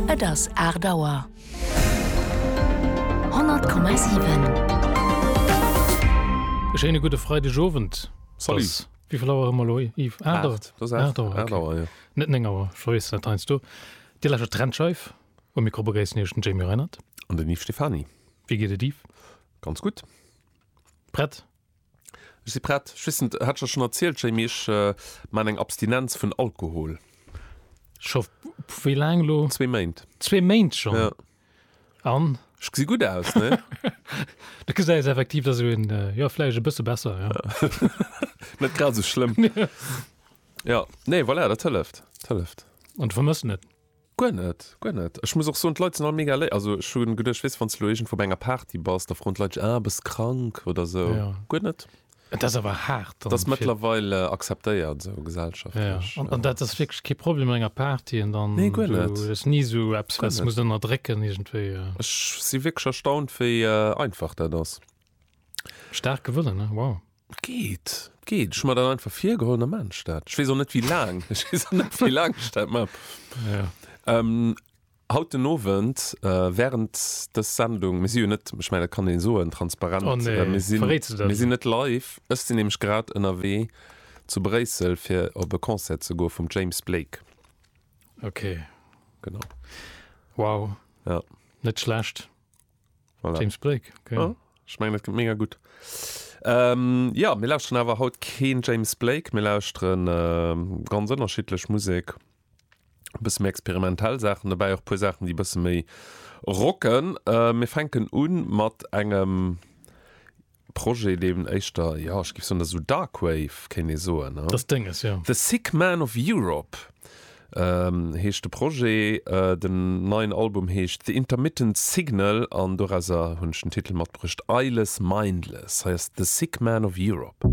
Et ass aacht Auer. 100,7. E schéine gudde Freideg Owend. Salut. Wéivill Auer hu mer elo, Yves? Aacht Auer? Aacht, dass aacht. Aacht Auer, jo. Net néng Auer, ech verwésselen dat heiansdo. Dir lauschtert Trennscheif. Um Mikro begréissen iech den Jamie Reinert. An den Yves Stephany. Wéi geet et, Yves? Ganz gutt. Prett? Ech si prett. Ech weess net, hat ech der schonn erzielt, Jamie, ech maachen eng Abstinenz vun Alkohol. Scho wéi laang elo? Zwee Méint. Zwee Méint schonn? Jo. An? Ech gesi gutt aus, ne? Du gesäis effektiv, dass een, jo, vläicht e bësse besser, jo. Net grad esou schlëmm. Jo, nee, voilà, dat hëlleft, dat hëlleft. An du vermëssen et? Guer net, guer net. Ech muss och soen, d'Leit sinn all mega léif. Also ech hu geduecht, weess de, wann s de elo iergendwou bei enger Party bass, da froen d'Leit dech, ah, bass krank oder esou. Jo. Guer net. Et ass awer haart dann. Et ass mëttlerweil acceptéiert esou gesellschaftlech. Jo. An dat ass wierklech kee Problem op enger Party an dann. Nee, guer net. Du hues ni esou eppes, wat s de musst ënnerdrécken iergendwéi. Ech si wierklech erstaunt, wéi einfach dat ass. Stark gewonnen ne wow. Geet geet ech mat dat einfach virgeholl am Mensch dat ech wees och net wéi laang ech wees och net wéi laang ech dat man ja. ähm, haut den Owend äh, während des Sendung mir si jo net ech mein dat kann een soen transparent oh, nee. äh, mir sinn mir sinn net live ech sinn nämlich grad ënnerwee zu Bréissel fir op e Concert ze go vum James Blake okay genau wow ja. net schlecht. Voilà. James Blake, okay. Ja, ich meine, das kommt mega gut. Ähm, ja, mir lauschteren awer haut keen James Blake, mir lauschteren ähm, ganz ënnerschiddlech Musik. E bësse méi experimentell Sachen dobäi, och puer Sachen, déi bësse méi rocken. Äh, mir fänken un mat engem Projet, deen éischter, jo, ech géif soen, esou Dark Wave, kéint ee soen. Dat ass Denges, jo. The Sick Man of Europe heescht de Projet. Den neien Album heescht The Intermittent Signal an dorauser hunn ech den Titel matbruecht, Eyeless Mindless. Hei ass The Sick Man of Europe.